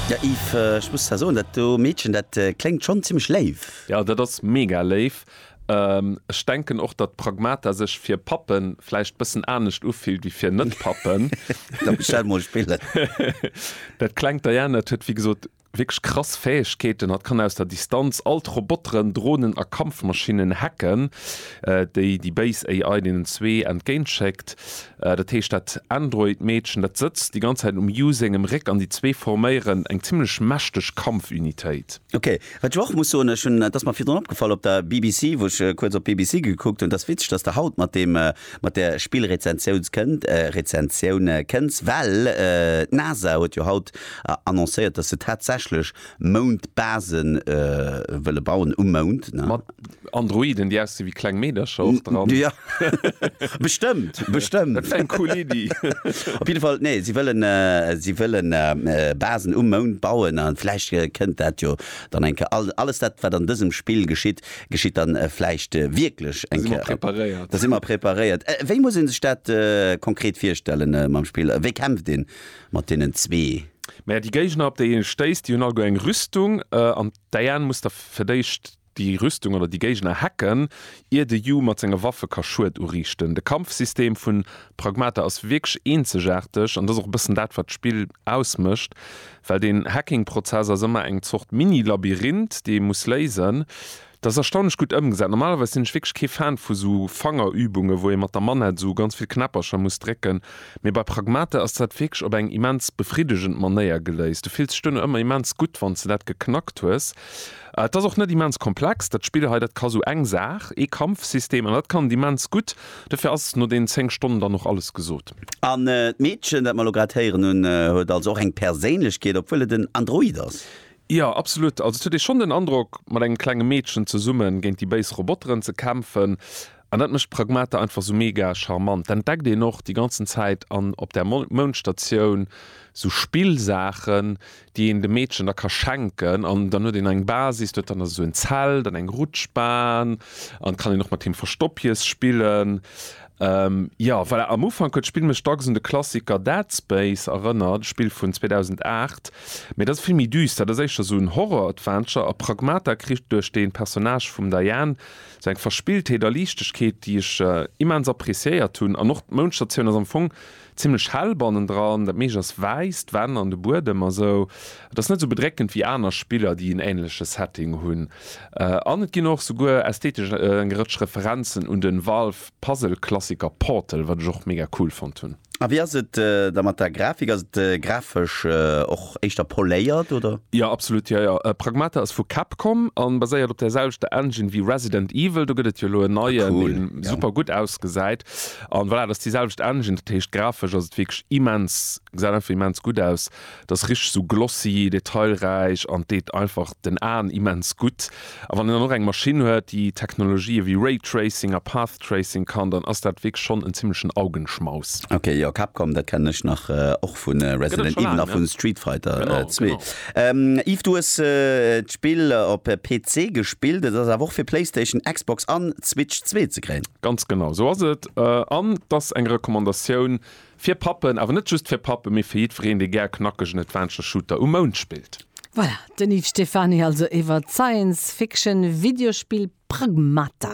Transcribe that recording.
Ja Yves, ech muss der soen, dat do Meedchen, dat kléngt schonn zimmlech léif. Jo dat ass mega léif. Ech denken och datt Pragmata sech fir Pappen vläicht bëssen anescht ufillt wéi fir net Pappen. Da bestell mol Spillen. Dat klengt Diana huet wéi gesot wierklech krass Fäegkeeten. Hatt kann aus der Distanz all d'Roboteren, Dronen a Kampfmaschinnen hacken, déi déi béis AI deenen zwee entgéint schéckt. Dat heescht dat Android Meedchen dat sëtzt déi ganz Zäit um Yu sengem Réck an déi zwee forméieren eng zimlech mächteg Kampfunitéit. Ok, wat ech och muss soen, ech hunn, et ass mer virdrun opgefall op der BBC, wou ech kuerz op d'BBC gekuckt hunn, et ass witzeg dass de haut mat deem, mat där Spillrezensiouns kënnt, Rezensioun kënns, well d'NASA huet jo haut annoncéiert dass se tatsächlech Moundbase wëlle bauen, um Mound, ne? Mat Androiden, déi aussi wéi kleng Meedercher och dran. Ja, bestëmmt, bestëmmt. Dat wär eng cool Iddi. Op jidde Fall, nee, si wëllen, si wëlle Basen um Mound bauen a vläicht kënnt dat jo dann eng Kéier. All, alles dat, wat an dësem Spill geschitt, geschitt dann vläicht wierklech eng Kéier. Da si mer preparéiert. Da si mer preparéiert. Wéi muss ee sech dat konkret virstellen mam Spill? Wéi kämpft een? Mat deenen zwee. Mä déi Géigner, op déi ee stéisst, déi hunn alleguer eng Rüstung. An d'Diane muss da fir d'éischt déi Rüstung oder déi Géigner hacken, ier de Yu mat senge Waffe ka Schued uriichten. De Kampfsystem vu Pragmata ass wierklech eenzegaarteg an dat ass och e bëssen dat, wat d'Spill ausmécht, well deen Hacking-Prozess ass ëmmer eng Zort Mini-Labyrinth, déi ee muss léisen. Dat ass erstaunlech gutt ëmgesat. Normalerweis sinn ech wierklech kee Fan vu sou Fangerübungen, wou ee mat der Manette sou ganz vill Knäppercher muss drécken. Mee bei Pragmata ass dat wierklech op eng immens befriddegend Manéier geléist. Du fills dech duerno ëmmer immens gutt, wann s de dat geknackt hues. Et ass och net immens komplex, dat Spill hei. Dat ka sou eng Saach, ee Kampfsystem, an dat kann et immens gutt. Dofir ass no deenen 10 Stonnen dann och alles gesot. An d'Meedchen, dat mer elo grad héieren hunn, huet also och eng Perséinlechkeet, obwuel et en Android ass? Jo, absolut. Also et huet ee schonn den Androck, mat engem klenge Meedchen zesumme géint déi béis Roboteren ze kämpfen. An dat mécht Pragmata einfach sou mega charmant. Dat entdeckt een och déi ganzen Zäit an op där Moundstatioun sou Spillsaachen, déi een dem Meedchen da ka schenken. An dann huet een eng Basis, do huet dann esou en Zelt an eng Rutschbahn an kann een och mat him Verstoppjes spillen. Jo, voilà, am Ufank huet d'Spill mech dacks un de Klassiker Dead Space erënnert, e Spill vun 2008. Mee dat ass vill méi düster, dat ass éischter esou en Horror-Adventure a Pragmata kritt duerch de Personnage vum Diane esou eng Verspilltheet a Liichtegkeet, déi ech immens appreciéiert hunn. An och d'Mounschtertioun ass am Fong Zimlech hell bannendran, dat meescht ass wäiss, d'Wänn an de Buedem a sou. Et ass net sou bedréckend wéi aner Spiller, déi en änleche Setting hunn. An et ginn och souguer ästhetesch eng Rëtsch Referenzen un den Valve-Puzzle-Klassiker Portal, wat ech och mega cool fonnt hunn. A wéi ass et da mat der Grafik? Ass et grafesch och éischter poléiert, oder? Jo, absolut, jo, jo. Pragmata ass vu Capcom a baséiert op där selwechter Engine wéi Resident Evil. Do gëtt et jo elo en neien, dee super gutt ausgesäit. An voilà, dat ass déi selwecht Engine, dat heescht grafesch ass et wierklech immens, gesäit einfach immens gutt aus, et ass richteg esou glossy, detailräich an deet einfach den Aen immens gutt. A wann een dann och eng Maschinn huet, déi Technologië wéi Ray Tracing a Path Tracing kann, dann ass dat wierklech schonn en zimmlechen Augenschmaus. Ok, jo, Capcom, dat kennen ech nach och vu Resident Evil a vu Street Fighter 2. Yves, du hues d'Spill op PC gespillt, et ass awer och fir Playstation, Xbox an Switch 2 ze kréien. Ganz genau esou ass et. An et ass eng Recommandatioun fir Pappen, awer net just fir Pappen, mee fir jiddwereen, dee gär knackegen Adventure Shooter um Mound spillt. Voilà, den Yves Stephany also iwwert d'Science Fiction Videospill Pragmata.